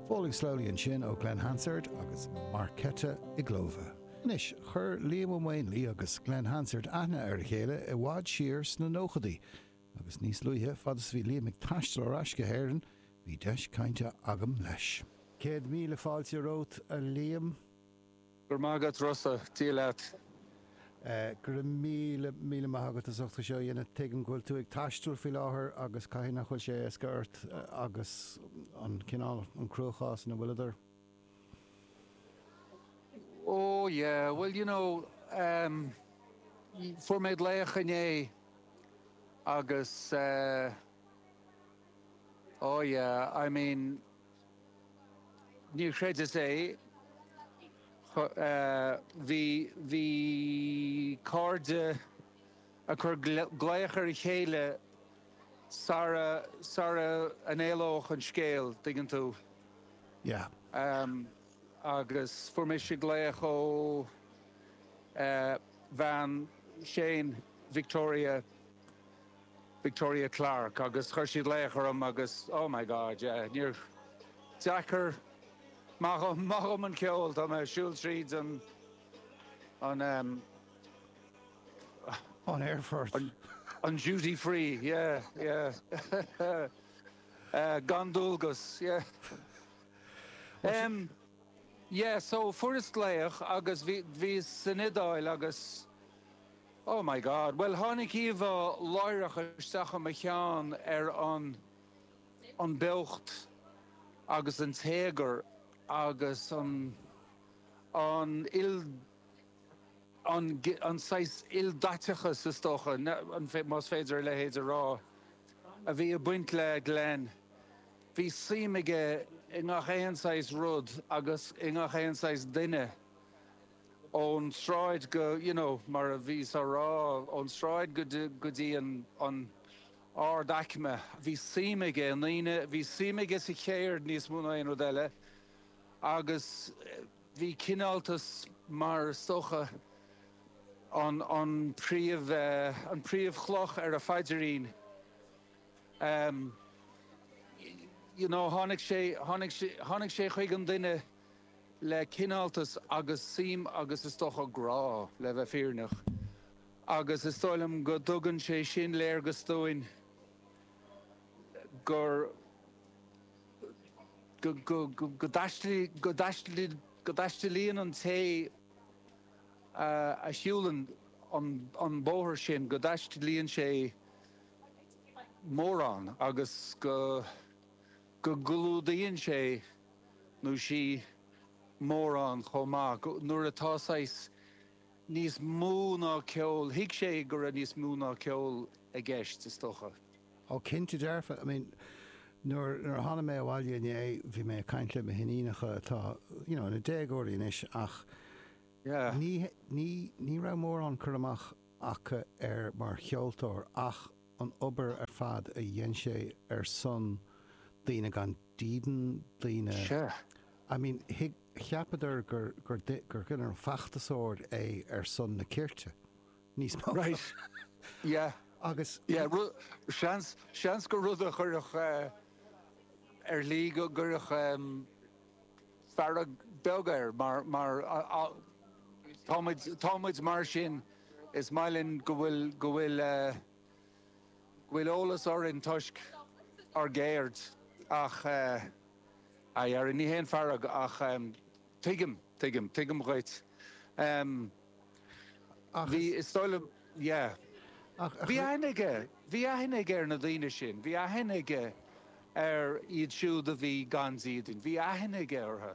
Falling Slowly ansin ó Glen Hansard agus Markéta Irglová. Anois, chuir Liam Ó Maonlaí agus Glen Hansard aithne ar a chéile i bhfad siar sna nóchadaí, agus níos luaithe, fad is a bhí Liam ag taisteal ar ais go hÉirinn, bhí deis cainte agam leis. Céad míle fáilte romhat, a Liam. Go raibh maith agat Rossa, Dia leat. Go raibh míle, míle maith agat as ucht é seo a dhéanamh. Tuigim go bhfuil tú ag taisteal faoi láthair agus caithfidh nach bhfuil sé éasca ort agus an cineál, an cruachás ina bhfuil tú. Ó, yeah, bhuel, you know, em, fuair mé glaoch inné agus eh, oh, yeah, I mean, Níor chreideas é. Bhí bhí cairde ag cur glaoch ar a chéile sara, sara n-éalódh an scéal, dtuigeann tú. Yeah. Agus fuair mise glaoch ó bhean Shane, Victoria. Victoria Clarke, agus chuir sí glaoch orm agus oh my God, yeah, níor deacair, maith dhom, maith dhom an ceol, tá mé a' siúl tríd an, an ehm, An aerfort. an, an duty free, yeah, yeah, eh, gan dualgas, yeah, ehm, yeah, so fuaireas glaoch agus bhí, bhíos san Iodáil agus. Oh my God. Bhuel, tháinig íomhá láithreach isteach i mo cheann ar an an beocht agus an téagar agus an an il an an saghas ildaiteachas, is dócha, an más féidir a leithéid a rá, a bhí ag baint le Glen. Bhí suim aige i ngach aon saghas rud agus i ngach aon saghas duine. ón tsráid go, you know, mar a bhíos á rá, ón tsráid go dtí, go dtí an, an ardaicme. Bhí suim aige i ndaoine, bhí suim aige sa cheird níos mó ná aon rud eile agus bhí cineáltas mar is dócha an, an príomh, an príomhchloch ar a phaidirín. You know, tháinig sé, tháinig sé, tháinig sé chuig an duine. le cineáltas agus suim agus, is dócha, grá, le bheith fírinneach. Agus is dóigh liom go dtugann sé sin léargas dúinn gur, go dtaistealaíonn an té a shiúlann an bóthar sin, go dtaistealaíonn sé mórán agus go. go gclúdaíonn sé nó sí mórán chomh maith, go, nuair atá saghas níos mó ná ceol, thuig sé go raibh níos mó ná ceol i gceist, is dócha. Ó cinnte dearfa, I mean, nuair a tháinig mé abhaile inné, bhí mé ag caint le mo hiníonacha atá, you know, ina déagóirí anois ach Yeah. ní, ní, ní raibh mórán cur amach acu air mar cheoltóir ach, an obair ar fad a dhein sé ar son daoine gan dídean, daoine, Sure. I mean, thuig, cheapadar gur, gur, gur cineál feachtasóir é ar son na cirte, níos mó. Right. Yeah. Agus. Yeah, ru, seans, seans gur rud a chuirfeadh eh ar shlí go gcuirfeadh em. fearg bheag air mar, mar a, tá muid, tá muid mar sin, is maith linn go bhfuil, go bhfuil, go bhfuil eolas orainn toisc ár gceird ach eh, a Dheaide ní haon fearg ach em, tuigim, tuigim, tuigim dhuit. Em. Ach Bhí, is. is dóigh liom, yeah. Ach, ach. Bhí aithne aige, bhí aithne aige ar na daoine sin, bhí aithne aige ar iad siúd a bhí gan dídean, bhí aithne aige orthu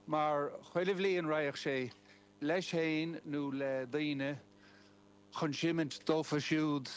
mar chuile bhliain raghadh sé leis féin nó le daoine chun seimint dófa siúd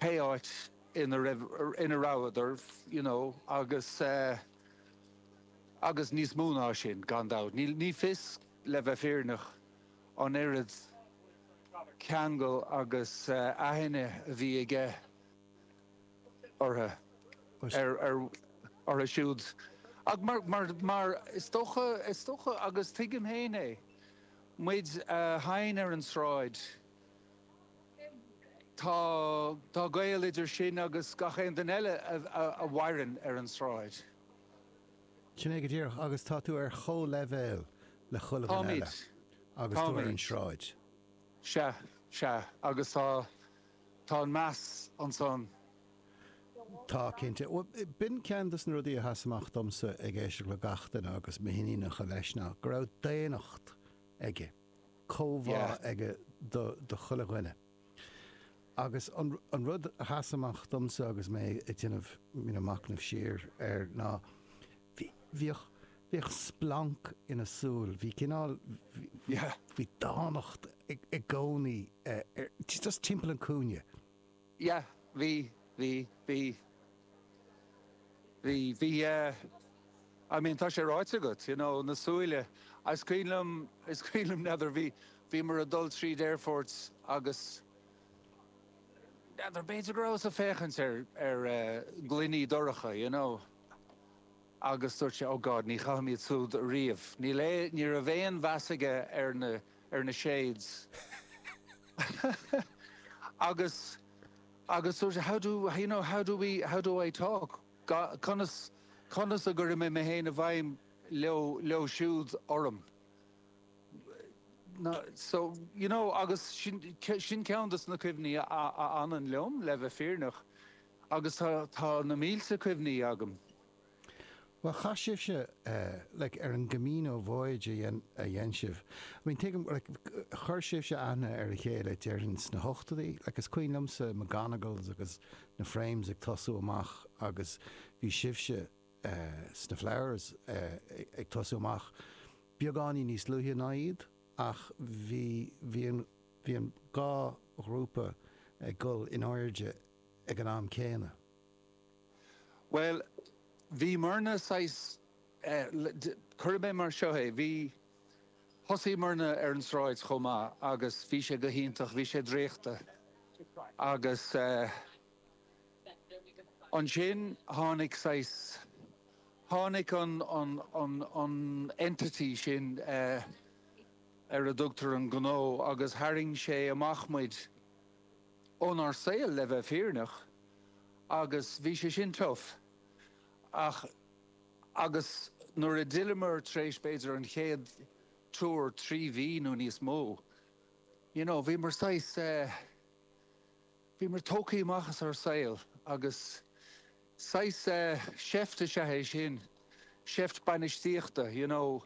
pé áit ina raibh, ina rabhadar, you know, agus eh, agus níos mó ná sin, gan dabht. Níl, ní fios. Le bheith fírinneach, an oiread ceangal agus aithne a bhí aige orthu, orthu siúd, ach mar is dócha, is dócha, agus tuigim féin é, muid a sheinn ar an sráid, tá gaol idir sin agus gach aon duine eile a mhaireann ar an sráid. Sin é go díreach, agus tá tú ar chomhleibhéal le chuile dhuine eile Táimid, agus tú ar an táimid. sráid. Sea, sea, agus tá, tá an meas ansan. Tá, cinnte. Bhuel, b'in ceann des na rudaí a sheas amach domsa ag éisteacht le gach duine, agus mo hiníonacha leis, ná go raibh daonnacht aige, comhbhá Yeah. aige do, do chuile dhuine. Agus an rud a sheas amach domsa agus mé ag déanamh, you know, machnaimh siar air ná, bhí, bhíodh, bhíodh splanc ina súil, bhí cineál, bhí, bhí dánacht i gcónaí ar, just timpeall an cúinne. Yeah, bhí, bhí, bhí. Bhí, bhí eh, I mean tá sé ráite agat, you know, na súile, is cuimhin liom, is cuimhin liom, n'fheadar, bhí, bhíomar ag dul tríd aerfort agus, n'fheadar, b'fhéidir go rabhas ag féachaint ar, ar eh gloiní dorcha, you know, agus dúirt sé, oh God, ní chaithim iad súd riamh, níl eh, ní raibh aon mheas aige ar na, ar na shades agus, Agus dúirt, how do, you know, how do we, how do I talk, conas, conas a gcuirfidh mé mé féin i bhfeidhm leo siúd, orm, so, you know, agus sin, sin ceann de na cuimhní a, a fhanann liom, le bheith fírinneach, agus tá, tá na mílte cuimhní agam. Bhuel, chaith sibhse, like, ar an gCamino voyage a dhein sibh, I mean, tuigim, like, chuir sibhse aithne ar a chéile, déarfainn, sna hochtóidí, like, is cuimhin liomsa McGonagles agus na Frames ag tosú amach agus bhí sibhse sna Flowers ag tosú amach beagáinín níos luaithe ná iad ach bhí, bhí an, bhí an dhá ghrúpa ag dul in airde ag an am céanna. Bhuel, bhí muirne saghas, cuirfidh mé mar seo é, bhí, thosaigh muirne ar an sráid chomh maith agus bhí sé go hiontach, bhí sé draíochta. Agus ansin tháinig saghas, tháinig an entity sin ar a dtugtar an gnó agus tharraing sé amach muid. ónár saol, le bheith fírinneach, agus bhí sé sin tough. Ach, agus nuair a d'fhilleamar tar éis, b'fhéidir, an chéad tour, trí mhí nó níos mó, you know, bhíomar saghas eh, bhíomar tógthaí amach as ár saol agus saghas eh, seift is ea é sin, seift bainistíochta, you know,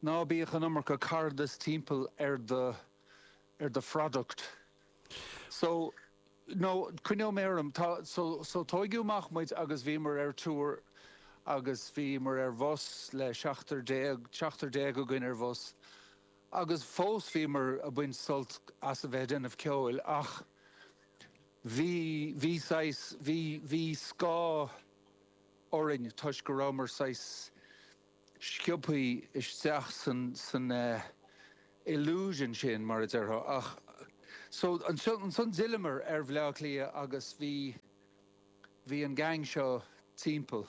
ná bíodh an iomarca cairdeas timpeall ar do, ar do phroduct. So, no, coinneoidh mé orm. Tá, so, tóigeadh amach muid agus bhíomar ar tour agus bhíomar ar bhus le seachtar déag, seachtar déag againn ar bhus agus fós bhíomar a' baint sult as a bheith a' déanamh ceoil ach bhí, bhí saghas, bhí, bhí scáth orainn toisc go rabhamar saghas. sciobtha isteach san illusion sin, mar a déarfá. Ach so, ansan d'fhilleamar ar Bhleá Cliath agus bhí, bhí an gang seo timpeall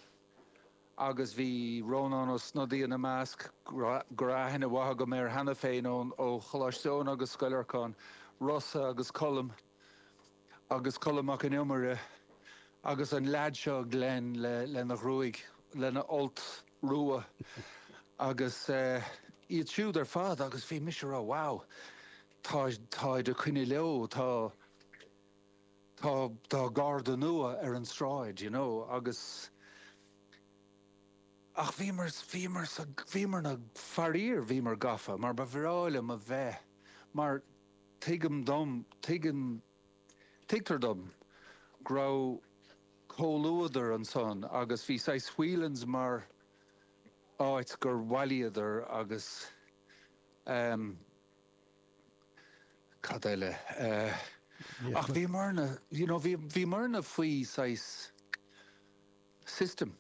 agus bhí Rónán Ó Snodaigh ina measc, go raibh aithne mhaith agam air cheana féin ó Choláiste Eoin agus Scoil Lorcáin, Rossa agus Colm, agus Colm Mac an Iomaire agus an leaid seo Glen lena ghruaig, lena fholt rua agus iad siúd ar fad agus bhí mise a rá wow tá, táid ag coinneáil leo, tá, tá garda nua ar an tsráid you know agus ach bhíomar, bhíomar sa, bhíomar na, faraor bhíomar gafa mar ba bhreá liom a bheith mar, Tuigim dom, tuigim, tuigtear dom go raibh comhluadar ansan agus bhí saghas Whelan's mar áit gur bhailíodar agus ehm. cad eile eh. Ach bhíomarna, you know, bhíomarna faoi saghas system,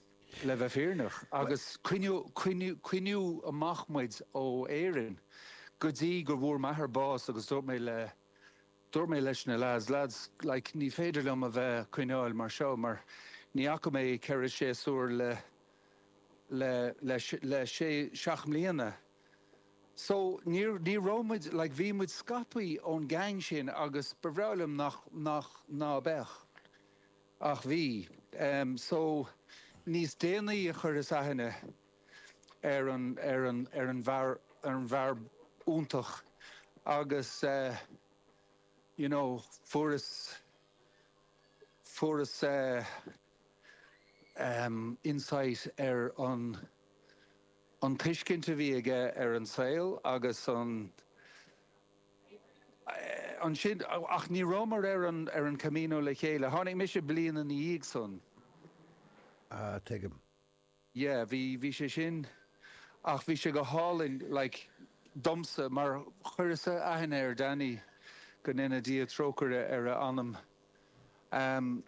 le bheith fírinneach, agus coinníodh amach muid ó Éirinn go dtí go bhfuair m'athair bás agus dúirt mé le, dúirt mé leis na lads, lads, like, ní féidir liom a bheith a' coinneáil mar seo mar ní fhaca mé ceithre séasúr le, le, le, le sé, seacht mbliana. So, níor, ní raibh muid, like, bhí muid scaipthe ón gang sin agus ba bhreá liom nach, nach, ná beadh. Ach bhí. So, níos déanaí a chuireas aithne ar an, ar an, ar an bhfear, ar an bhfear iontach agus eh, you know, fuaireas, fuaireas eh, em, insight ar an, an tuiscint a bhí aige ar an saol agus an, ansin, ach ní rabhamar ar an ar an Camino le chéile. Tháinig mise bliain ina ndiaidh san. Ah, tuigim. yeah, bhí, bhí sé sin, ach bhí sé go hálainn, like, domsa, mar chuireas-sa aithne ar Danny, go ndéana Dia trócaire ar a anam, em,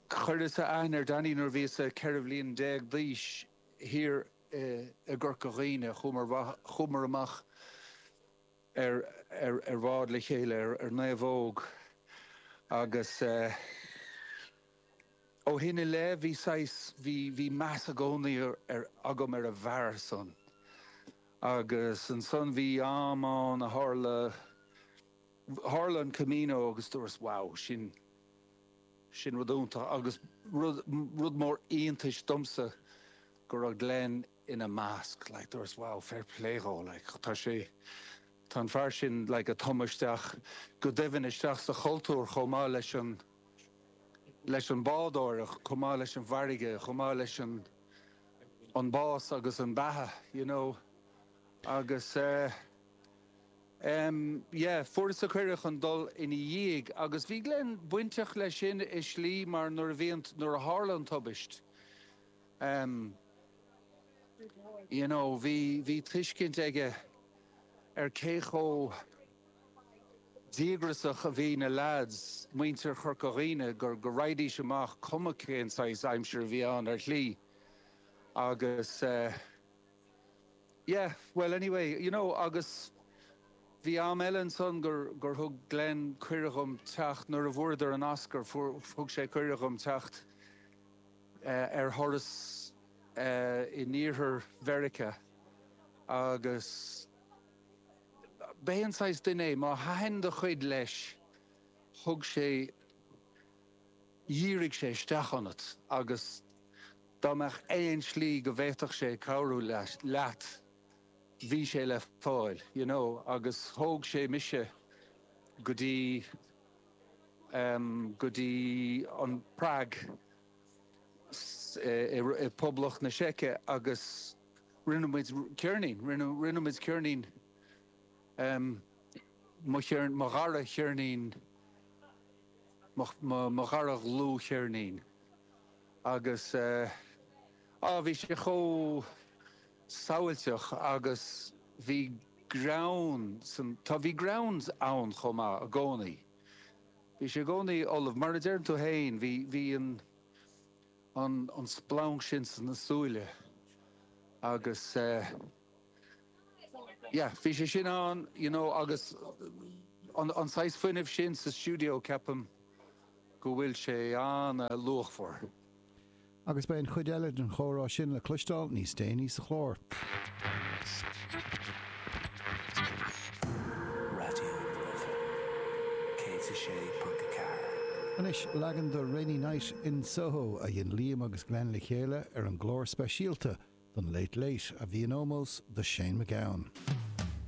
chuireas-sa aithne ar Danny nuair a bhíos-sa ceithre bhliain déag d'aois, thiar i, i gCorca Dhuibhne, chuamar, chuamar amach, ar bhád le chéile ar naomhóg agus ó shin i leith bhí saghas, bhí, bhí meas i gcónaí ar, agam ar an bhfear san agus ansan bhí am ann a tharla, tharla an Camino agus dúras wow, sin, sin rud iontach agus rud, rud mór iontais domsa go raibh Glen. ina measc, like there was wow fair play dhó like tá sé tá an fear sin like ag tumadh isteach go doimhin isteach sa chultúr chomh maith leis an leis an bádóireacht chomh maith leis an bhfarraige chomh maith leis an an bás agus an beatha you know agus eh em yeah fuaireas-sa cuireadh chun dul ina dhiaidh agus bhí Glen bainteach leis sin i slí mar nuair a bhíonn nuair a tharla an tubaist em, you know, bhí, bhí tuiscint aige ar cé chomh díograsach a bhí na lads, muintir Chorca Dhuibhne, go, go raghaidís amach cuma cén saghas aimsir a bhí ann, ar shlí. Agus eh, yeah, bhuel anyway, you know, agus bhí am eile ansan gur, gur thug Glen cuireadh dhom teacht, nuair a fuaireadar an Oscar, fuair, thug sé cuireadh dhom teacht, ar thuras in iarthar Mheiriceá agus ba é an saghas duine é, má thaitin do chuid leis, thug sé, dhírigh sé isteach ionat agus dá mbeadh aon slí go bhféadfadh sé cabhrú leat, bhí sé le fáil, you know, agus thóg sé mise go dtí. go dtí an Prág i bPoblacht na Seice agus rinne muid ceirnín, rinne muid ceirnín, mo cheirnín, mo dhara cheirnín, mo dhara dhlúthcheirnín agus á bhí sé chomh, samhailteach agus bhí greann, tá, bhí greann ann chomh maith i gcónaí. Bhí sé i gcónaí ullamh, mar a deireann tú fhéin, bhí, bhí an, an, an splanc sin sna súile agus eh, yeah, bhí sé sin ann, you know agus an, an saghas fuinnimh sin sa stiúideo, ceapaim go bhfuil sé an-luachmhar. Agus beidh an chuid eile den chomhrá sin le cloisteáil níos déanaí sa chlár. Raidió na Life 106.4. Anois, leagan de 'Rainy Night in Soho' a dhein Liam agus Glen le chéile ar an gclár speisialta den Late Late a bhí in ómós do Shane MacGowan.